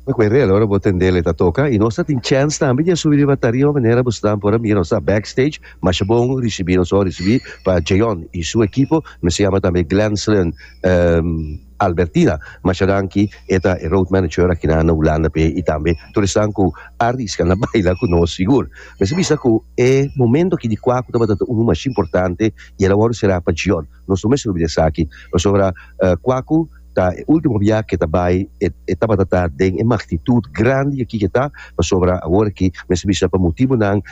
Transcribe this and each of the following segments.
Bo kwe rel ora bo tendel e ta toka i nos ta tin chèns tambe di a subi riba tarima manera bo esnan por a mira nos ta backstage masha bon risibí. Nos a risibí pa Jayon i su ekipo mester yama tambe Glenslin Albertina masha danki e ta e road manager akinan na Hulanda p'e i tambe tur esnan ku a riska na baila ku nos sigur mester bisa ku e momento aki di kua ku tabata ta unu masha importante i el a wòrdu será pa Jayon. Nos no mester oblida esaki. Pasobra kua ku ta e último bia ke ta bai, e e tabata ta den e magnitud grandi di aki ke ta, pasobra awor aki mester bisa pa motibunan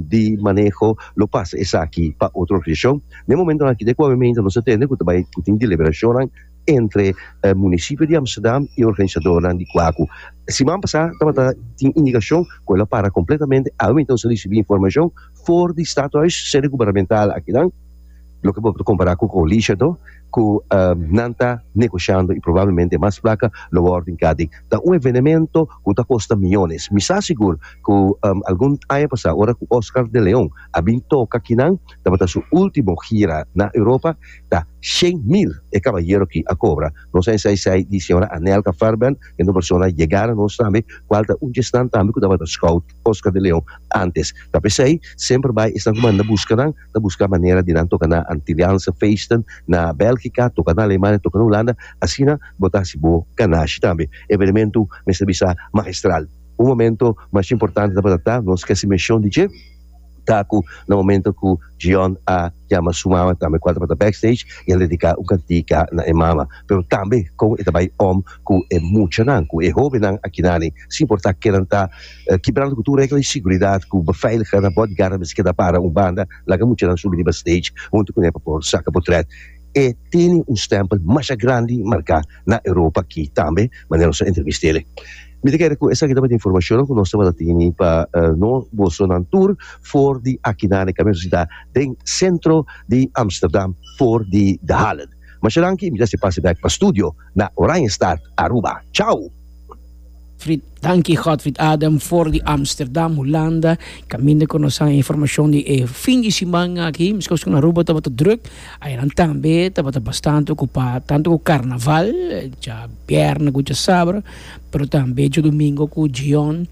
di maneho lo pasa esaki pa otro organisashon. Den e momentonan aki, den kua memente nos ta tende ku ta bai ku tin deliberashonnan entre munisipio di Amsterdam i organisadornan di kua ku siman pasá tabata tin indikashon ku el a para kompletamente, awe meinte nos a risibí informashon for di Stadhuis, sede gubernamental akinan. Loke bo ta kompará ku kolisha to ku nan ta negoshando i probablemente mas plaka lo wòrdu inkadi. Ta un evenemento ku ta kosta miónes. Mi sa sigur ku algun aña pasá ora ku Oscar de Leon a bin toka kinan tabata su último gira na Europa, ta shen mil e kabayero ki a kobra. Nos a ensai esei di señora Anelka Fairbairn, kende un persona yegá na nos tambe, kual ta un djesnan tambe ku tabata scout Oscar de Leon ántes. Ta p'esei semper bai esnan ku manda buska nan. ta busca manera di nan toca na Antilliaanse feesten, na Belgica, toca na Alemania, toca na Hulanda, asina bo ta haci bo ganashi tambe. Evenemento mester bisa magistral. Un momento mas importante tabata ta nos casi mencion di dje, ta cu na momento cu Djian a jama su mama tambe cual tabata backstage y a dedica un cantica na e mama, pero tambe con e ta bay om cu e muchanan, cu e hobennan aki nan, sin importa ke nan ta. Kibrando ku tur regla di siguridad ku beveiligha na bodyguard mester keda para un banda, laga muchanan subi riba stage huntu ku ne pa por saka potret. E tene un stempel masha grandi marká na Europa aki tambe, manera nos a entrevist'ele. Mi ta kere ku esaki tabata informashonnan ku nos tabata tene pa no boso nan tur for di akinan na e kaminda sita den sentro di Amsterdam for di De Halen. Masha danki, mi ta hasi pase bèk pa studio. na Oranjestad, Aruba. Chau! Frit Dankie Godfried Adam for di Amsterdam, Hulanda, kaminda ku nos a e informashon di e fin di siman aki. Meskos ku na Aruba tabata drùk, ayanan tambe tabata bastante okupá, tantu ku karnaval, dja bièrnè ku dja sabr, pero tambe djodomingo ku djion,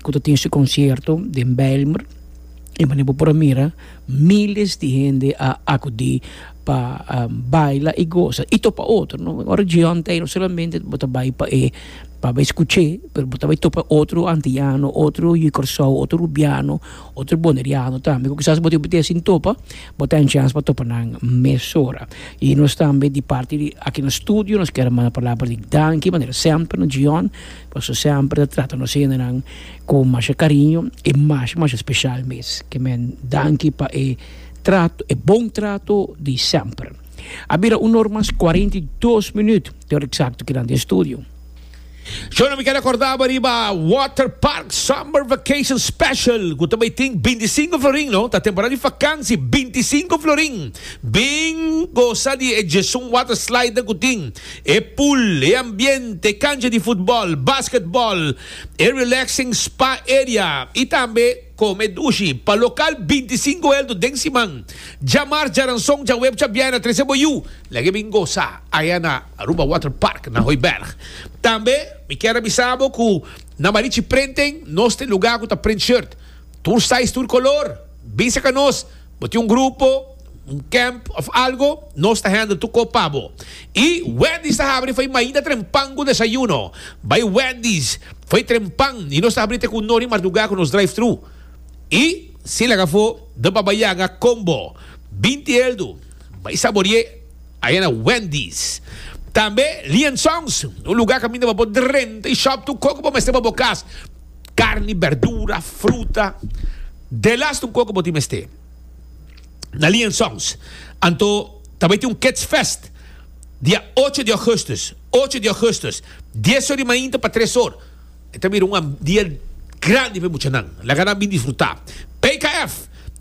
ku ta tin su konsierto den Bijlmer. I manera bo por a mira, míles di hende a akudí. pa baila y goza y topa otro no ora John ta ahí no solamente bo ta bay pa e pa bay scuche pero bo ta bay topa otro antiano otro yu Curaçao otro rubiano otro boneriano tambe cu kisas bo ta bay sin topa bo ta chance pa topa nan mesora y nos tambe di parti di aki na studio nos quiero manda palabra di danki manera semper na John pasobra semper ta trata nos hende nan con masha cariño y masha masha special mes kimen danki pa e Trato, e bon trato di semper. A bira un or mas kuarenta i dos minüt, te or eksakto keda na e studio. Shona mi keda kordaba riba Water Park Summer Vacation Special ku ta bai tin binti sinku florin, no ta temporada di fakansi binti sinku florin. Bin gosa di e djesun water slide nan ku tin, e pool, e ambiente, e kancha di futbòl, basketbòl, e relaxing spa area i tambe. Kome dushi pa lokal binti sinku eldu den siman, djamars djaranson djaweb djabiay na trese bo yu. Lege bin gosa aya na Aruba Water Park na Hooiberg. Tambe mi kier a bisa bo ku na Marichi Prenten nos tin luga ku ta print shirt. Tur size tur kolor. Bisa ka nos bo tin un grupo. un camp of algo, nos ta hende tur kop pa bo. Y Wendy's ta habri fo'i mainta tren pan cu desayuno. Bai Wendy's fo'i tren pan y nos ta habri te cu un ori marduga cu nos drive thru. Y si laga fo do pa bai yanga combo binti eldu bai sabori'e aya na Wendy's. Tambe Lee and Sons, un luga caminda pa bo drenta y shop tur coke bo mester pa bo cas. Carni, berdura, fruta, de las tur coke bo tin mester. na Lian Songs. Anto ta bai tin un Kids Fest dia ocho di Augustus, ocho di Augustus, dies or di mainta pa tres or. E ta bira un dia grandi pa e muchanan. Laga nan bin disfruta. PKF,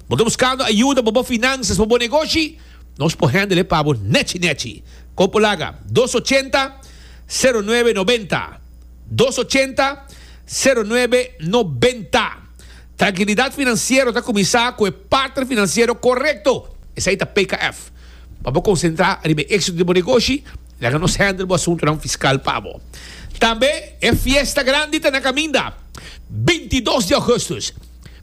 bo ta buskando ayuda pa bo finansas, pa bo negoshi? Nos por handle e pa bo nechi nechi. Kon por laga? Dos ochenta, sero nuebe nobenta, dos ochenta, sero nuebe nobenta. Trankilidat finansiero ta kuminsá ku e partner finansiero korekto, esei ta PKF. Pa bo konsentrá riba e éksito di bo negoshi, laga nos hèndel bo asuntunan fiskal pa bo. Tambe e fiesta grandi ta na kaminda, bintidos di Augustus.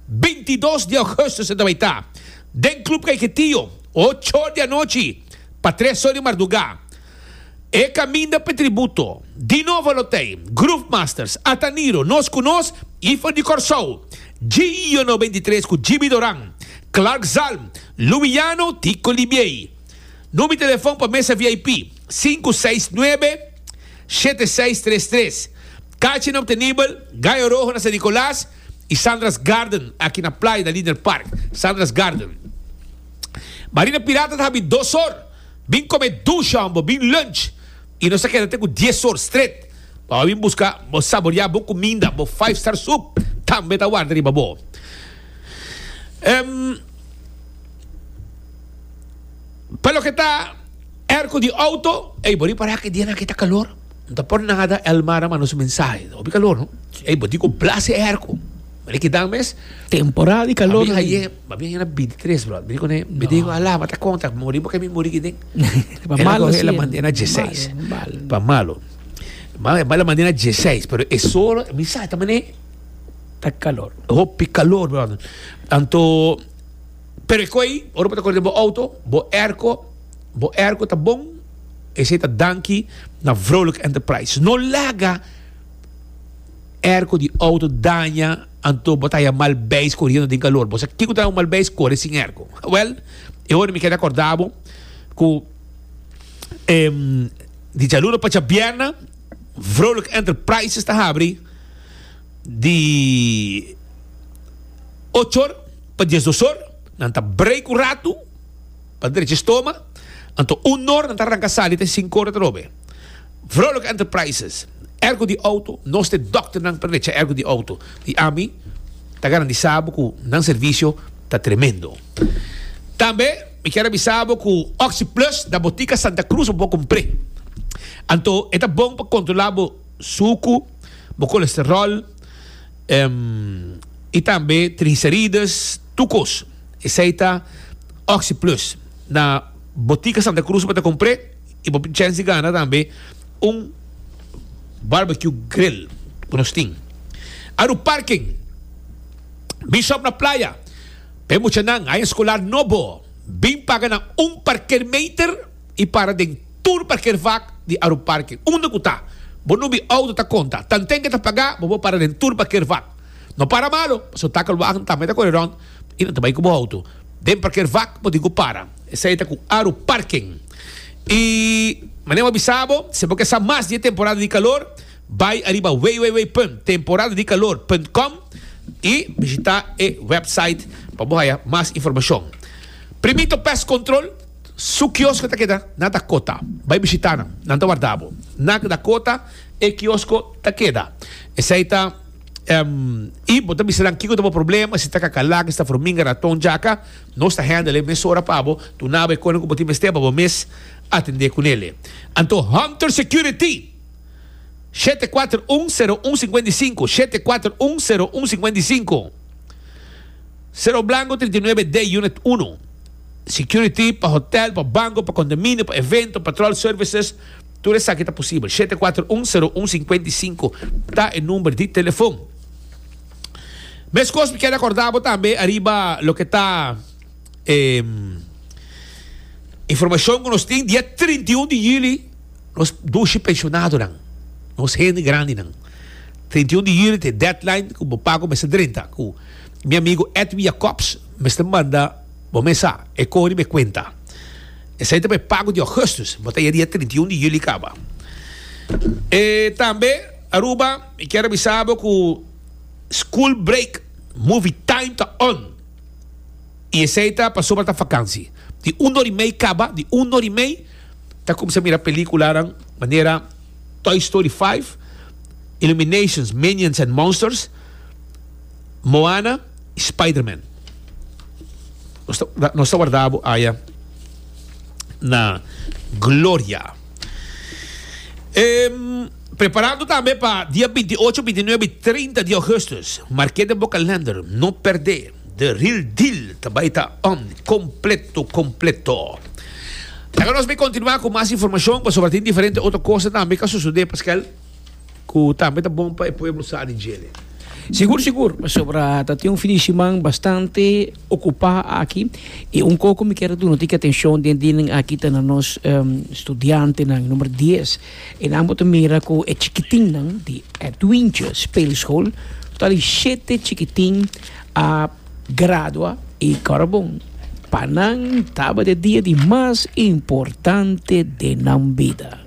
Bintidos di Augustus e ta bai ta den Club Caiketio, ocho di anochi pa tres or di mardugá. E caminda p'e tributo. Di novo lo t'ey, Groove Masters, Ataniro, Nos Cu Nos y for di Corsou, Gio Noventa y Tres cu Jimmy Doran, Clark Zalm, Luwiano, Tico Libiey. Numi telefon pa mesa VIP, sinku seis nuebe, shete seis tres tres. Cachi na Obtenibel, Gallo Rojo na San Nicolas y Sandra's Garden aki na Playa na Linder Park. Sandra's Garden. Marina Pirata ta habi dos or. Bin come dush ho'an bo bin lunch y nos a keda te cu dies or stret. Bo a bin busca bo saboria bo cuminda, bo five star soup tambe ta warda riba bo. Pa loke ta airco di auto, ey bo ripara cu e dianan aki ta calor. No ta por nada Elmar a manda su mensahe, ta hopi calor no. Ey bo di cu blas e airco. Mira kidan mes. Temporada di calor. Ma bien era bintitres bro mira kune mi diego ala mata konta muri bo ke mi muri kiten el a kohe el a manda na dieseis pa malo ma el a manda na dieseis pero e sol mi sa ta mane ta kalor hopi kalor brother anto pero e koi ora bo ta kor den bo outo bo airco bo airco ta bon esei ta danki na vrolijk enterprise no laga airco di outo daña Anto bo ta haya mal beis coriendo den calor. Bo sa kico ta un mal beis? Core sin erco. Wel, e hora mi keda corda bo cu em, di djaluno pa djabierna, Vrolijk Enterprises ta habri di ochor pa diesdosor. Nan ta brei cu ratu. pa drecha stoma, anto un nor nan ta ranka sali ta e sinku ora tarobe. Vrolijk Enterprises, ergo di auto, nos ta e dòkternan pa drecha ergo di auto, i ami ta garandisá bo ku nan servisio ta tremendo. Tambe mi kier a bisa bo ku Oxi Plus na Botika Santa Cruz bo por kumpr'é, anto e ta bon pa kontrolá bo suku, bo kolesteròl, i tambe trigiserides, tur kos. Esei ta Oxi Plus. Na Botica Santa Cruz bo ta compr'e y bo chansi gana tambe un Barbecue Grill cu nos tin. Aru Parking, Bishop na Playa. Pa e muchanan, Haya Escolar no bo. Bin paga na un parkeermeter y para den tur parkeervak di Aru Parking. Unda cu ta bo no bi auto ta conta. Tanten ke ta paga bo por para den tur parkeervak. No para malo pasobra takelwagen tambe ta core rond. y nan ta bay cu bo auto den parker vak bo tin cu para esai ta cu aru parking y manera bo bisa bo si bo ke sa mas di e temporada di calor bay ariba www.temporadadicalorcom y bishita e website pa bo haya mas informacion primito pest control su kiosko ta keda na dakota bay bishita nan nan ta warda bo na dakota e kiosko ta keda esai ta. I bo ta bisa nan kiko ta bo problema, si ta kakalak, esta furminga, raton, jaka, nos ta handle e mesora pa bo, tuna bo e kona ku bo tin mester pa bo mes atende ku nele. Anto Hunter Security, shete kuater un, sero un singwenta i sinku, shete kuater un, sero un singwenta i sinku, Cerro Blanco trinta i nuebe D, Unit unu, Security pa hotel, pa banko, pa kondominio, pa evento, patrol services, Tur esaki ta posibel. Shete kuater un, seru un, sinkuenta i sinku ta e number di telefon. Meskos mi keda korda bo tambe ariba loke ta e informashon ku nos tin. Dia trinta i un di yuli nos dushi penshonadonan, nos hende grandinan, trinta i un di yuli ta e deadline ku bo papá ku mester drenta ku mi amigu Edwin Jacobs mester manda. Bo mes sa, e kori bo e kuenta. Esei ta bo e pago di Augustus, bo ta y'a dia trinta i un di Juli kaba. E tambe, Aruba, mi kier avisa bo ku school break, movie time ta on. I esei ta pasobra ta vakansi. Di un ora i mei kaba, di un ora i mei ta kuminsá mira pelíkulanan manera Toy Story five, Illuminations, Minions and Monsters. Moana y Spiderman. Nos ta warda bo aya na gloria. Preparando tambe pa dia binti i ocho, binti i nuebe y trinta di Augustus. Marke den bo kalender, no perde. The Real Deal ta bay ta on completo, completo. Laga nos continua cu mas informacion pasobra tin diferente otro cosa tambe cu a sucede, paskel. ku tambe ta bon pa e pueblo sa di djele. Sigur sigur, pasobra ta tin un fin di siman bastante okupá aki, i un kos ku mi kier ta duna tingki atenshon den dia nan aki ta na nos studiantenan numer dies, e nan bo ta mira ku e chikitinnan di Edwintje Speelschol total di shete chikitin a gradua i kòrda bon pa nan tabata e dia di mas importante den nan bida.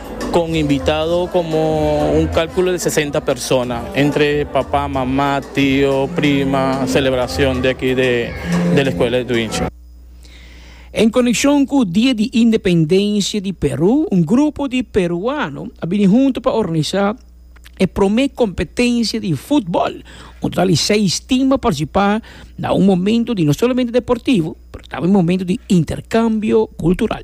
Con invitado como un calculo de sesenta persona, entre papa, mama, tio, prima, celebracion de aki de de la Escuela de Tuincha. En coneccion cu Dia di Independencia di Peru, un grupo di peruano a bini hunto pa organisa e prome competencia di futbol. Un total di seis team a participa na un momento di no solamente deportivo pero tambe momento di intercambio cultural.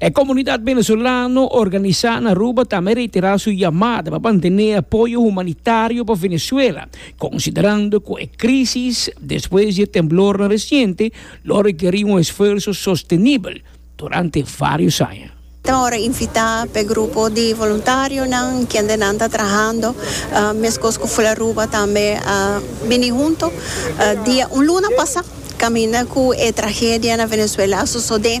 E komunidat venezolano organisá na Aruba tambe a reiterá su yamada pa mantené apoyo humanitario pa Venezuela, konsiderando ku e krísis despues di e temblornan resiente lo rekerí un esfuerso sostenibel durante vários aña. Ta ora invitá pa e grupo di voluntarionan kende nan ta trahando meskos ku Fularuba tambe a bini huntu dia un luna pasá kaminda ku e tragedia na Venezuela a sosodé.